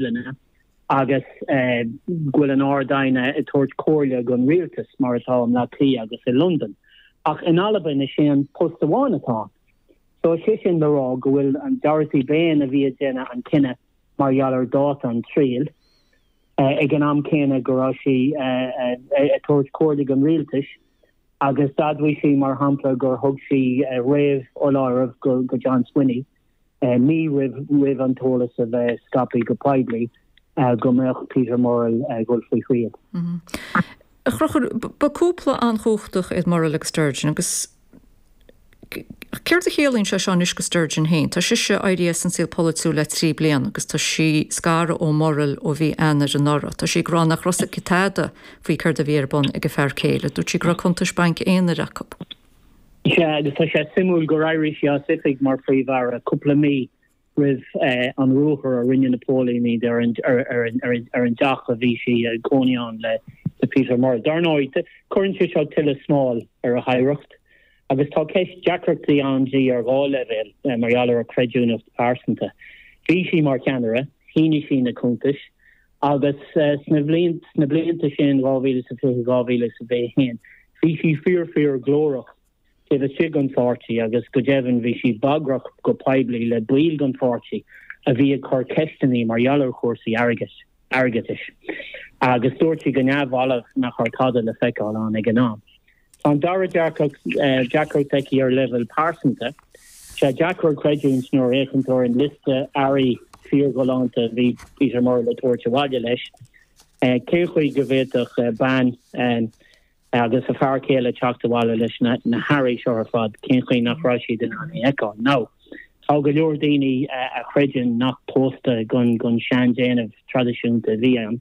Duibhlinne agus go bhfuil an Ard-Aighne ag tabhairt comhairle don rialtas, mar atá i mBleá Cliath agus i Londain. Ach in Albain is é an post amháin atá ann. So is é sin le rá go bhfuil an Dorothy Bain a bhí ag déanamh an chinnidh mar gheall ar dháta an triail, ag an am céanna go raibh sí ag tabhairt comhairle don rialtas, agus d'admhaigh sí, mar shampla, gur thug sí réamhfholáireamh go John Swinney. mí roimh an t-eolas a bheith scapaí go poiblí go mbeadh Peter Murrell ag dhul faoi thriail. A Chruchúr, ba cúpla an-chumhachtach iad Murrell agus Sturgeon agus céard a chiallaíonn sé seo anois do Sturgeon féin? Tá sise éirí as an saol polaitiúil le trí bliana agus tá sí scartha ó Murrell ó mhí Eanáir anuraidh. Tá sí ag rá nach raibh a fhios aici tada faoi céard a bhí ar bun ag a fear céile. Dúirt sí go raibh cuntais bainc aonair acu. Is ea, agus tá sé suimiúil gur éirigh sí as oifig mar Phríomh-Aire cúpla mí roimh an ruathar a rinne na póilíní ar an dteach a bhí sí ag cónaí ann le Peter Murrell. Dar ndóigh, cuireann sé seo tuilleadh smáil ar a hoidhreacht, agus tá ceist deacrachtaí ann di ar dhá leibhéal mar gheall ar a creidiúnacht phearsanta. Bhí sí mar cheannaire, shínigh sí na cuntais, Agus sa ba sna blianta sin 2020, 2021, bhí sí fíor-fíor-ghlórach taobh istigh den pháirtí agus go deimhin bhí sí bagrach go poiblí le baill den pháirtí a bhí ag cur ceisteanna mar gheall ar chúrsaí airg airgeadais. Agus dúirt sí go neamhbhalbh nach raibh tada le feiceáil ann ag an am. Tá an dara deac deacracht aici ar leibhéal pearsanta. Sé deacair creidiúint nuair a fhéachann tú ar an liosta earraí fíorghalánta a bhí Peter Murrell ag tabhairt abhaile leis. Cén chaoi go bhféadfadh bean agus a fear céile teacht abhaile leis na hearraí seo ar fad, cén chaoi nach raibh siad in ann é a fheiceáil? Nó tá go leor daoine a chreideann nach pósadh den seandéanamh traidisiúnta a bhí ann.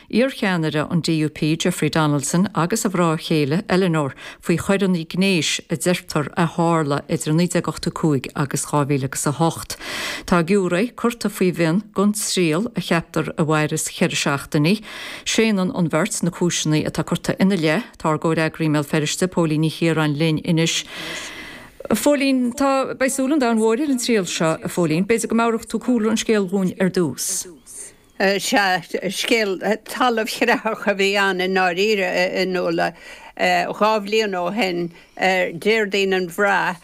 Iarcheannaire an DUP Jeffrey Donaldson agus a mhná céile Eleanor faoi choireanna gnéis a deirtear a tharla idir 1985 agus 2008. Tá giúiré curta faoi mhionn don triail a cheaptar a mhairfeas ceithre seachtainí. Séanann an bheirt na cúiseanna atá curtha ina leith. Tá ár gcomhfhreagraí i mBéal Feirste Póilín Ní Chiaráin linn anois. A Phóilín, beidh súil an domhain mhóir ar an triail seo, a Phóilín. B'fhéidir go meabhrófá cúlra an scéil dhúinn ar dtús. Is ea, scéal talamhchreathach a bhí ann i ndáiríre, a Fhionnuala. Dhá bhliain ó shin, Déardaoin an Bhraith,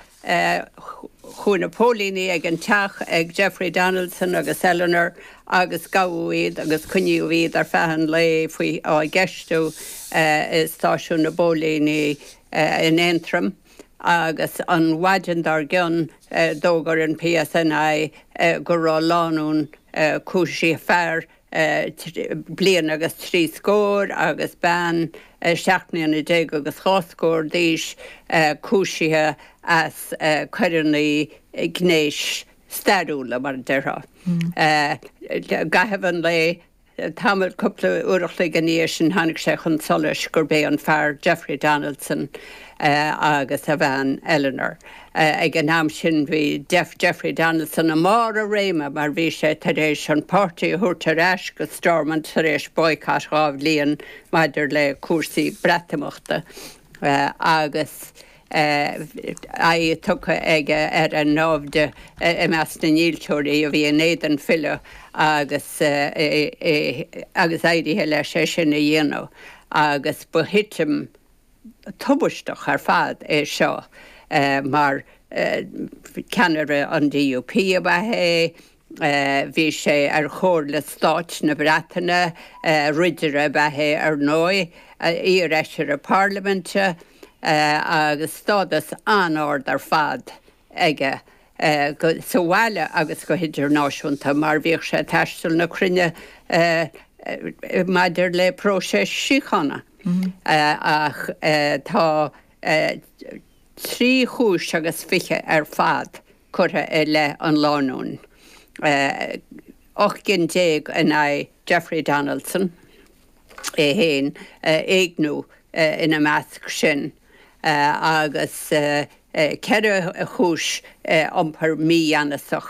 chuaigh na póilíní ag an teach ag Jeffrey Donaldson agus Eleanor agus gabhadh iad agus coinníodh iad ar feadh an lae faoi cheistiú i stáisiún na bpóilíní in Aontroim agus an mhaidin dár gcionn d'fhógair an PSNI go raibh lánúin Cúisíodh fear bliain agus trí scór agus bean seacht mbliana déag agus dhá scór d'aois cúisithe as coireanna gnéis stairiúla, mar a déarfá. I gcaitheamh an lae, tamall, cúpla uair a chloig ina dhiaidh sin, tháinig sé chun solais gurb é an fear Jeffrey Donaldson agus a bhean Eleanor. Ag an am sin bhí Jeffrey Donaldson i mbarr a réime mar bhí sé tar éis an páirtí a thabhairt ar ais go Stormont tar éis boycott dhá bhliain maidir le cúrsaí Breatimeachta agus aghaidh tugtha aige ar a naimhde i measc na ndílseoirí a bhí in éadan filleadh agus agus éirithe leis é sin a dhéanamh agus ba thitim Tubaisteach ar fad é seo mar ceannaire an DUP ab ea é, bhí sé ar Chomhairle Stáit na Breataine, ridire ab ea é ar ndóigh, iarfheisire Parlaiminte agus stádas an-ard ar fad aige, sa bhaile agus go hidirnáisiúnta, mar bhíodh sé ag taisteal na cruinne maidir le próiseas síochána. Ach tá trí chúis agus fiche ar fad curtha i leith an lánúin, ocht gcinn déag in aghaidh Jeffrey Donaldson é féin, éigniú ina measc sin. agus ceithre chúis iompair mígheanasach